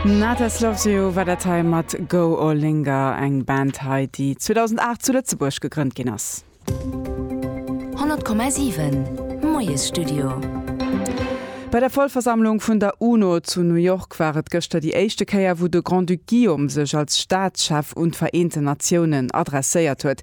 Natas Loves You war dat hei mat Go Or Linger, eng Band hei, déi 2008 zu Lëtzebuerg gegrënnt ginn ass. 100,7 Moiesstudio. Bei der Vollversammlung vun der UNO zu New York war et gëschter déi éischte Kéier, wou de Grand-Duc Guillaume sech als Staatschef un d'Vereenten Natiounen adresséiert huet.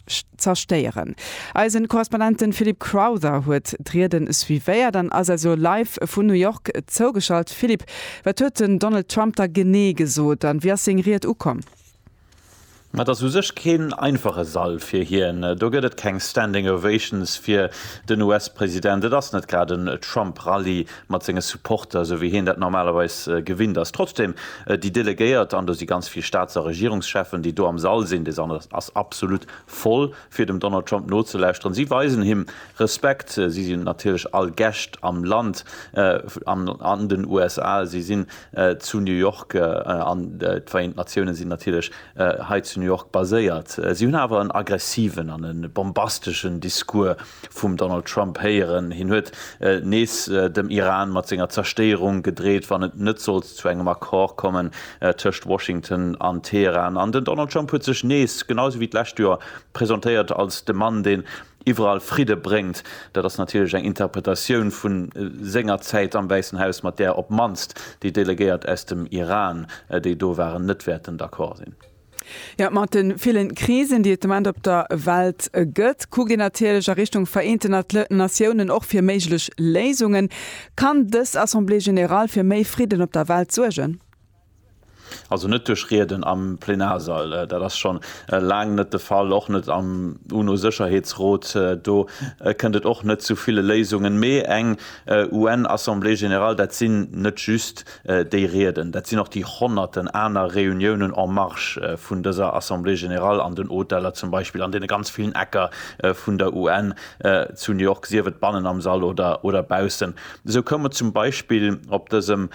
zerstéieren. Eisen Korrespondenten Philip Crowther huet d'Rieden suivéiert an ass also live vun New York zougeschalt. Philip, wat huet den Donald Trump da genee gesot an wéi ass seng Ried ukomm? Et ass u sech keen einfache Sall fir hien. Do gëtt et keng Standing Ovations fir den US-President. Et ass net grad en Trump-Rallye, mat senge Supporter, esou wéi hien dat normalerweis gewinnt ass. Trotzdem, déi Delegéiert, an do si ganz vill Staats a Regierungscheffen, déi do am Sall sinn, dee Sall ass absolut voll, fir dem Donald Trump nozelauschteren, si weisen him Respekt, si sinn natierlech all Gäscht am Land, an den USA, si sinn zu New York, an d'Vereent Natiounen sinn natierlech. hei zu New York baséiert. Si hunn awer en aggressiven an e bombasteschen Discours vum Donald Trump héieren. Hien huet nees dem Iran mat senger Zerstéierung gedreet, wann et net sollt zu engem Accord kommen tëscht Washington an Teheran. An den Donald Trump huet sech nees, genau esou wéi d'lescht Joer, presentéiert als de Mann, deen iwwerall Fridde bréngt, dat ass natierlech eng Interpretatioun vu senger Zäit am Wäissen Haus, mat där op d'mannst déi Delegéiert aus dem Iran, déi do waren, net wäerten d'accord sinn. Jo, mat de ville Krisen, déi et de Moment op der Welt gëtt, kuckt een natierlech a Richtung Vereenten Natiounen, och fir méiglech Léisungen. Kann dës Assemblée générale fir méi Fridden op der Welt suergen? Also net duerch Rieden am Plenarsall, dat ass scho laang net de Fall, och net am UNO-Sécherheetsrot. Do kënnt et och net zu ville Léisungen. Mee eng UN-Assemblée générale, dat sinn net just déi Rieden, dat sinn och déi honnerten aner Reuniounen en marge vun dëser Assemblée générale, an den Hoteller zum Beispill, an deene ganz villen Ecker vun der UN zu New York, sief et bannen am Sall oder baussen. Esou koum et zum Beispill op dësem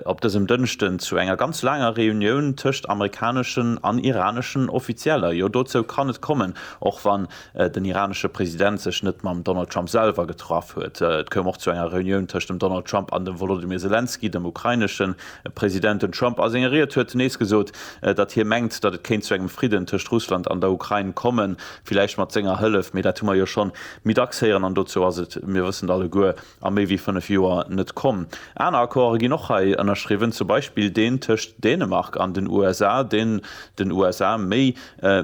op dësem Dënschden zu enger ganz laanger Reunioun tëscht amerikaneschen an iraneschen Offizieller. Jo, dozou kann et kommen, och wann den iranesche President sech net mam Donald Trump selwer getraff huet. Et koum och zu enger Reunioun tëscht dem Donald Trump an dem Wolodymyr Selenskyj, dem ukrainesche President. Den Trump a senger Ried huet nees gesot, datt hie mengt, datt et kéint zu engem Fridden tëscht Russland an der Ukrain kommen, villäicht mat senger Hëllef, mee dat hu mer jo schonn méi dacks héieren an dozou ass et, mir wëssen et alleguer, a méi wéi fënnef Joer net komm. Aner Accorde ginn och hei ënnerschriwwen, zum Beispill deen tëscht Dänemark an den USA, deen den USA méi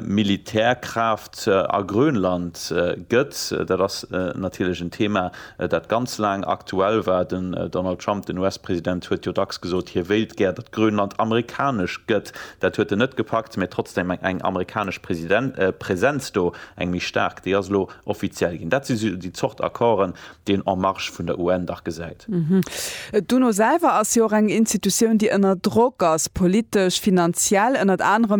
Militärkraaft a Grönland gëtt. Dat ass natierlech en Thema, dat ganz laang aktuell war. Den Donald Trump, den US-President, huet jo dacks gesot, hie wéilt gär, datt Grönland amerikanesch gëtt. Dat huet en net gepackt, mä trotzdem eng amerikanesch Presenz do, eng méi staark, déi ass elo offiziell ginn. Dat si déi Zort Accorden, deen En Marche vun der UN dach gesäit. D'UNO selwer ass jo och eng Institutioun, déi ënner Drock ass, politesch, finanziell, ënnert anerem,